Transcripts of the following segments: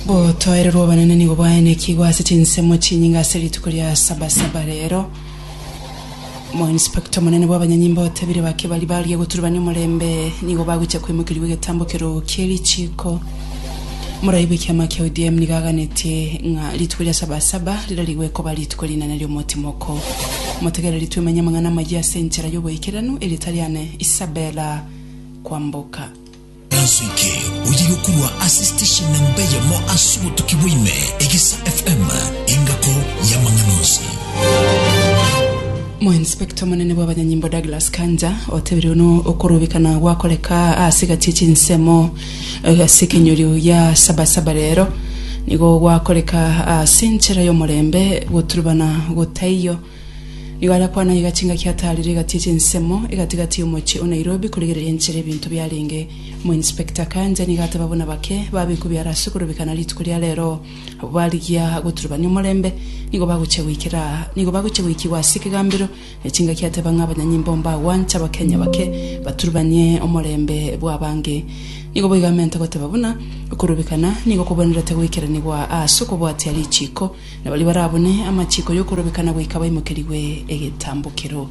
Gotoererwa obonene nigo bwaenekigwe ase chinsemo chinyinge ase rituko ria Sabasaba reero. Omoinspector omonene bw'abanyanyimbo otebire bake baria barigia goturebania omorembe nigo bagochia koimokerigwa egetambo keroo kie richiiko. Morai bw'ekiama kia ODM nigo aganetie ng'a rituko ria Sabasaba rirarigwe koba rituko rinene ri'omotimoko. Motegereri twemenye amang'ana amayia ase enchera y'oboikeranu erio tari ane Isabella kwamboka. Ensuki oyiga korwa ase station namba eyemo ase obotuki bwa ime, Egisa FM, engako y'amang'ana onsi. Moinspector omonene bw'abanyanyimbo Douglas Kanja otebirie buna okorubikana gwakoreka ase egati chinsemo eh, ase ekenyorio gia Sabasaba rero nigo gwakoreka ase enchera y'omorembe goturubana gotaiyo Nigo arakwane aiga chingaki ataarire egati eche ensemo egati-gati y'omochie o Nairobi korigereria enchera ebinto biarenge. Omo Inspector Kanja nigo ateba buna bake babekwe biara ase korobeka na rituko ria rero abwo barigia goturubania omorembe nigo bagochia goikera nigo bagochia goikigwa ase ekegambero ne chingaki ateba ng'a abanyanyimbo mbagwanche abakenya bake baturubanie omorembe bw'abange. Nigo boigo amentwe goteba buna okorobekana nigo kobwenerete goikeranigwa aase okobwatia richiiko na baria barabune amachiiko y'okorobekana goika baimokerigwe egetambokero.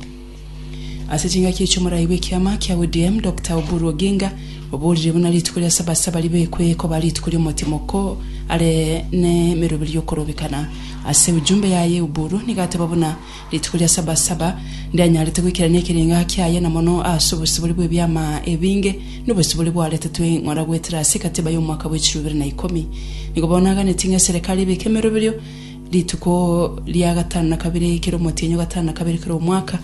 Ase chingaki echi omorai bw'ekiama kia ODM Doctor Oburu Oginga oborire buna rituko ria sabasaba ribekwe ekoba rituko ri'omotimoko are nemeroberio y'okorobekana. Ase ujumbe yaye Oburu nigo ateba buna Rituko ria sabasaba, ndanyarete goikerania ekerenga kiaye, na mono ase obosibore bw'ebiama ebinge, na obosibore bwaretetwe ng'ora goetera ase ekatiba y'omwaka bwe chiluu ibere na ikomi. Nigo bono naganetie ng'a eserekari ebeke emeroberio rituko ria gatano na kabere kera omotienyo gatano na kabere kera omwaka,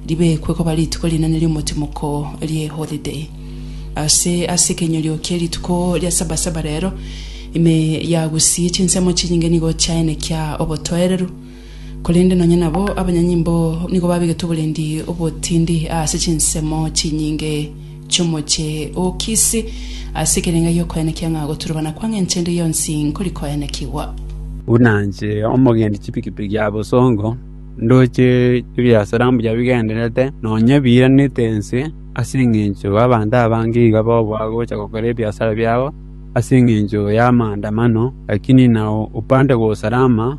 ribekwe koba rituko rinene ri'omotimoko ri'eholiday. Ase ase ekenyorio kie rituko ria sabasaba rero, ime ya gusii chinsemo chinyinge nigo chiaenekia obotoereru. korende nonya nabo abanyanyimbo nigo babegetwe oborendi obotindi ase chinsemo chinyinge chi'omochie o Kisi, ase ekerenga gi'okoenekia ng'a goturubana kwange inche ndi yonsi nkori koenekigwa. Buna inche omogendi chipikipiki ya bosongo, ndoche ebiasara mbuya bigendererete, nonya ebiiranete ense, ase engencho y'abanto abange iga babua gocha gokora ebiasara biabo ase engencho y'amaandamano, lakini nao opande kwa usalama.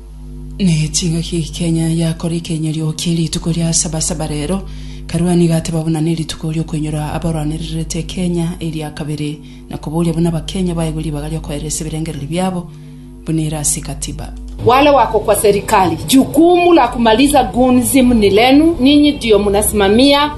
Ne chingaki Kenya yakora ekeinyorio kie rituko ria sabasaba rero, Karwani gateba buna nerituko riokwenyora abarwanererete Kenya eria kabere na koboria buna abakenya baegwe ribaga riokoeresa ebirengereri biabo buna ere ase katiba. Wale wako kwa serikali jukumu la kumaliza gunzi mni lenu ninyi ndio mnasimamia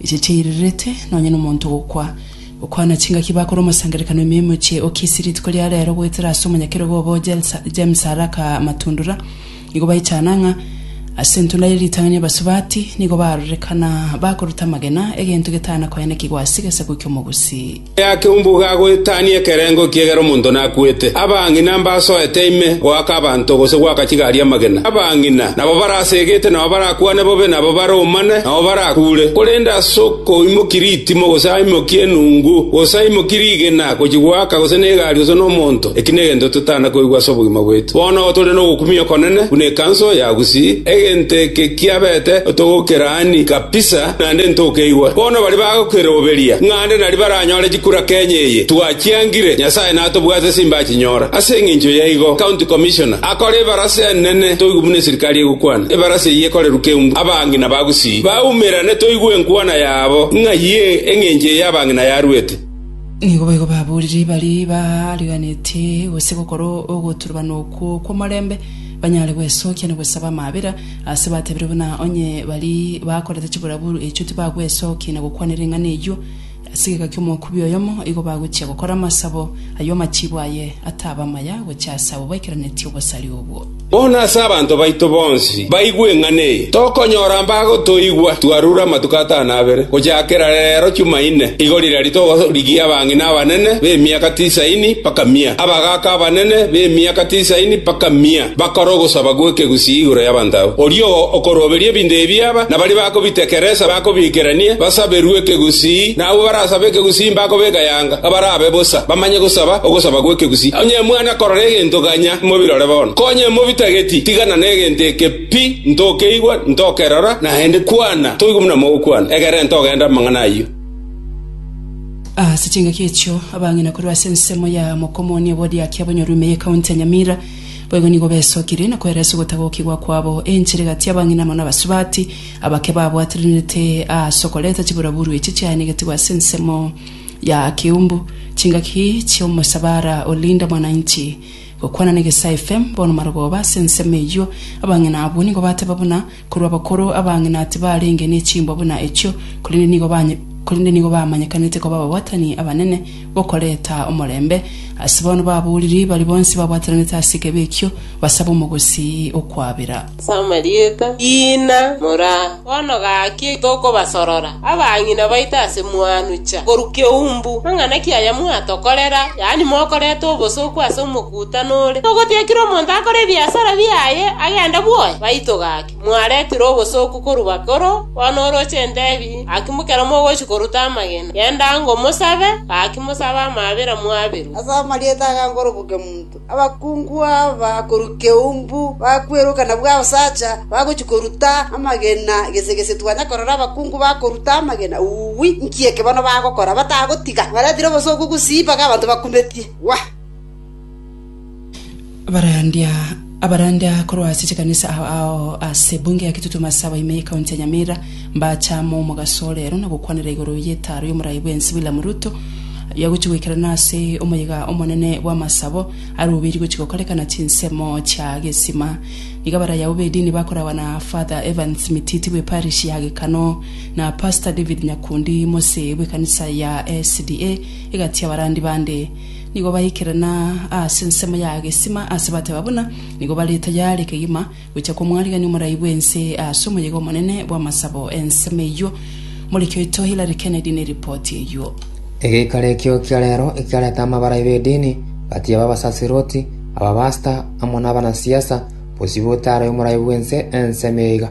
Echi chiairerete nonya nomonto gokwa. Gokwana chingaki bakore omosangererekano ime emochie o Kisii rituko ria reero goetera ase omonyakerogo obo James Araka Matundura nigo baichana ng'a ase entunda ye ritang'ani abasubati nigo barorekana bakoruta amagena egento getana koenekigwa ase egesaku ki'omogusi. Aya keumbuga agoetania ekerengo ekiya ekero omonto nakuete, abang'ina mbasoete ime goaka abanto gose goaka chigari amagena. Abang'ina nabo barasegete, nao barakwane bobe, nabo baromane, nao barakuure. Korende ase okoimokia ritimo, gose aimokie enungu, gose aimokie rigena gochia goaka gose negari gose nomonto, eki negento totana koigwa ase obogima bwaito. Bono igo tore nogokumia okonene buna ekanso ya Gusii, egento eke kiabete otogokeraani kabisa. naende ntokeigwa. Bono baria bagokeroberia ng'a nde naria baranyore chikura Kenya eye, twachiangire, Nyasae natobwate ase imbaga chinyora. Ase engencho yaigo, County Commissioner akore ebarasa enene toigwe buna eserikari egokwana. Ebarasa eyio ekorerwe keumbu abang'ina ba Gusii baumerane toigwe enkwana yabo ng'ai engencho eye abang'ina yarwete. Nigo boigo baboorire baria baariganetie gose gokora ogoturubana okwo kw'omorembe, banyare gwesookia na gwesaba amaabera, Ase batebire buna onye baria bakorete chiburaburu echio tibagwesokia na gokwanera eng'ana eyio ase egeka ki'omokubi oyomo, igo bagochia gokora amasabo ayio amachiibo aye ataba amaya gochia ase abwo baikeranetie obosari obwo. Bono ase abanto baito bonsi baigwe eng'ana eye, tokonyora mbagotoigwa. Twarure amatuko atano abere gochakera reero Chumaine, igo riria togorigia abang'ina abanene b'emiaka tisaini mpaka mia, abagaaka abanene b'emiaka tisaini mpaka mia. Bakore ogosaba gw'ekegusii igoro y'abanto abwo. Oria okoroberia ebinto ebi aba, na baria bakobitekeresa bakobiikeranie, basaberwe ekegusii, na abwo barasabe ekegusii mbakobeka eanga, abarabe bosa, bamanye gosaba ogosaba gw'ekegusii. Onye mwana korora egento ganya, mobirore bono. Konya mobitageti, tigana negento eke pi, ntokeigwa, ntokerora, naende kwana, toigwe buna mogokwana, egerenta ogende amang'ana ayio. Ase chingaki echio, abang'ina korwa ase ensemo ya Mokomoni obwadiaki abanyoro ime y'Ekaunti ya Nyamira, Boigo nigo besokire na koeresa ogotagokigwa kwabo enchera egati y'abang'ina amo n'abasubati, abake babwatranete aase okoreta chiburaburu echi chiaenegetigwe ase ensemo ya Keumbu, chingaki chi'omosabara o Linda Mwananchi. Gokwana na Egesae FM, bono marogoba ase ensemo eyio, abang'ina abwo nigo bateba buna, Korwa abakoro abang'ina tibarenge nechimbwa buna echio, korende nigo bamanyekanete koba ababwatani abanene b'okoreta omorembe. Ase bono babooriri baria bonsi babwataranete ase ekeebe ekio basabe omogosi o kwabera. Ase amarieta Ina mora bono gaki tokobasorora abang'ina baito ase mwanucha korwa keumbu, mang'ana ki aya mwatokorera, yaani mokoreta obosa okwo ase omokungu? Uta nore ogotiakire omonto akore ebiasara biaye agende bwoye? Baito gaki, mwaretire obosooku korwa bakoro, bono oroche entebi, gaki ekero mogochia koruta amagena, genda ango mosabe, gaki mosabe amaabera mwaberwe. Ase amarieta aya nkorobokia omonto, abakungu aba korwa Keumbu bakweroka na Bwaosacha bagochia koruta amagena gese gese twanya korora abakungu bakoruta amagena, uwi, nki eke bono bagokora batagotiga? Mwaretire obosooku gusii mpaka abanto bakumetie. Wa! Abarandia abarandia korwa ase chikanisa ao ao ase bunge ya Kitutu Masawa ime ye county ya Nyamira mbachama omogaso ore ero na gokwanera igoro y'etaaro y'omorai bw'ense William Ruto aria agochi goikerana ase omoyega omonene bw'amasabo arubirie gochi gokorekana chinsemo chia gesima. Nigo abaraya abo b'edini bakoragwa na Father Evans Mititi bwe parish ya Gekano na Pastor David Nyakundi mose bw'ekanisa ya SDA egati y'abarandi bande Nigo baikerana aase ensemo ya gesima ase bateba buna nigo bare tayare kegima gocha kw'omwarigani omorai bw'ense aase omoyega omonene bw'amasabo ensemo eyio. Morikioito Hillary Kennedy ne ripoti eyio. Egeikaro ekio kia reero ekiareta amabarai b'edini, batia b'abasaserdoti, abapastor, amo nabanasiasa, bosio botaarae omorai bw'ense ensemo eye iga.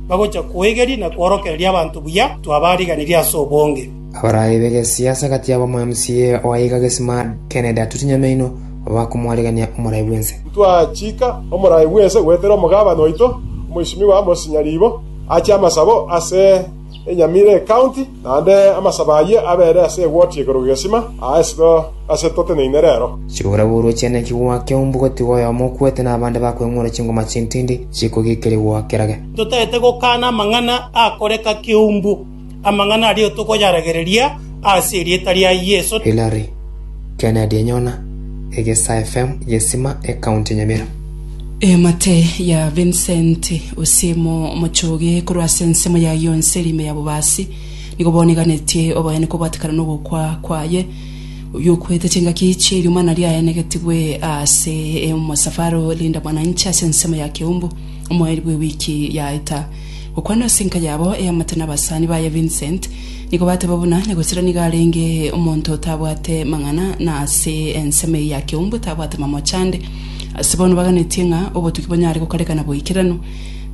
bagocha kwegeria na kworokereria abanto buya twabaariganirie ase obonge. Abarai b'egesiasa gati yabo omwMCA oaiga Gesima Kennedy Atuti Nyamaino bakomwarigania omorai bw'ense. Twachiika omorai bw'ense goetera omogabana oito Omweshimiwa Amos Nyariibo ache amasabo ase enyamira ecounty. Naende amasabo ayio abeere ase egoti igoro gegesima, aa esiko ase toteneine reero. Chiborabworwa chiane nchigwake umbu gotiga oyomo okwete na abande bakweng'ura chingoma chintindi chikogikerigwa kerage. Totaete gokana amang'ana akoreka keumbu, amang'ana aria tokoyaragereria ase erieta ria Yeso. Hillary Kennedy enyona, Egesa FM, Gesima, Ecounty ya Nyamira. Emate ya Vincent Osiemo omochoge korwa ase ensemo yaye yonsi ere ime ya bobaasi, nigo bono eganetie oboyani kobatekana nogokwa kwaye, oyio okwete chingaki chi'erimana riaye negetigwe ase omosafaro Linda Mwananchi ase ensemo ya Keumbu omoeri bw'ewiki yaeta. Gokwana ase enka yabo eamate nabasani baye Vincent, nigo bateba buna Nyagosera nigo arenge omonto otabwate mang'ana na ase ensemo eye ya Keumbu tabwate mamochande, Ase bono baganetie ng'a obotuki bonyare gokarekana boikeranu,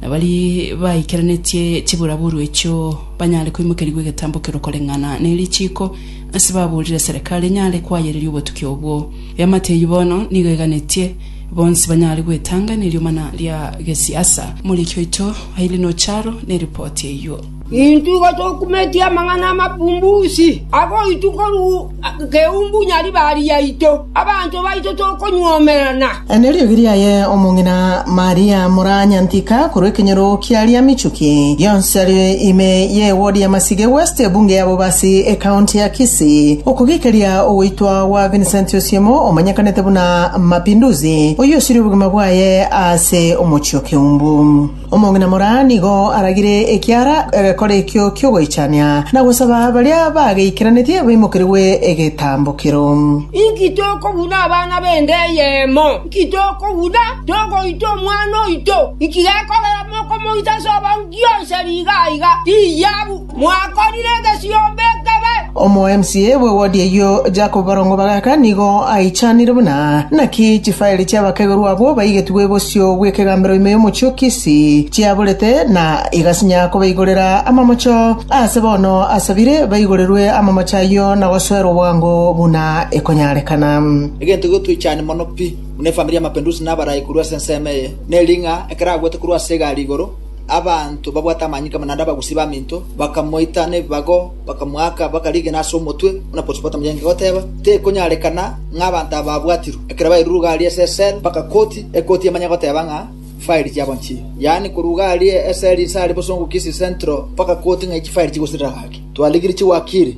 na baria baikeranetie chiburaburu echio banyare koimokerigwa egetambo ekero koreng'ana ne richiiko ase baborire Serikali enyare koayereria obotuki obwo. Eamate eyio bono nigo eganetie bonsi banyare gwetanga ne riomana ria gesiasa. Moriki oito Aileen Ocharo neripoti eyio. Intwe igo tokumetie amang'ana amabumbusi agoitwa korwa keumbu Nyaribari yaito, abanto baito tokonyuomerana. Aya neriogi riaye omong'ina Maria mora nyantika korwa ekenyoro kia Riamichuki, rionsi are ime y'ewodi ya Masige West, Ebunge ya Bobasi, Ekaonti ya Kisii. Okogekeria ogoitwa gwa Vincent Osiemo omanyekanete buna Mapinduzi, oyio osirie obogima bwaye ase omochie o Keumbu. Omong'ina moraa nigo aragire ekiara egekora ekio ki'ogoichania na gosaba baria bageikeranetie baimokerigwe egetambokero. Inki tokobuna abana b'ende eyemo? Inki tokobuna togoita omwana oito? Inki gekogera mokomoita ase obonge onsi nigo aiga? Tiyia! “Mwakorire egesiomba ekebe!” Omo-MCA bwe wodi eyio Jacob Barongo Bagaka nigo aichanire buna, Naki chifaeli chi'abakegerwa abwo baigetigwe bosio bw'ekegambero ime y'omochie o Kisii chiaburete na igasinya kobaigorera amamocho, aase bono asabire baigorerwe amamocho ayio na gosoerwa bwango buna ekonyarekana. Egento egotoichania mono pi buna efamiri ya Mapinduzi na abarai korwa ase ensemo eye, neri ng'a ekero agwete korwa ase egari igoro, Abanto babwate amanyinga amo naende abagusi b'aminto bakamoita nebibago, bakamoaka, bakarigena ase omotwe, buna Potipotamu yaengeka goteba, Tekonyarekana ng'a abanto aba babwatirwe. Ekero bairure ruga aria ase esel, baka koti, ekoti emanye goteba ng'a fairi chiabo nchii. Yaani korwa ruga aria esel inse aria bosongo Kisii Central, baka koti ng'a echi fairi chigosirira gaki. Twarigirie chiwakiri.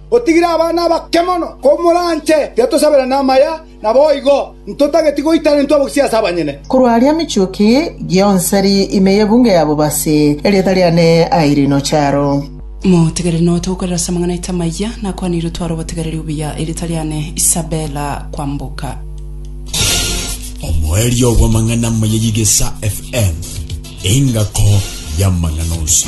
Otigire abana abake mono komoranche, tiatosabera namaya, naboigo ntotageti goitana intwe abogisia ase abanyene. Korwa aria michuki gionseri ime y'ebunge ya bobasi, erieta riane airino charo. Motegereri note gokorera ase amang'ana aito amayia, nakwanire otware obotegereri obuya, erieta riane Isabella Kwamboka. Omoerio bw'amang'ana amaya y'Egesa FM, engako y'amang'ana onsi.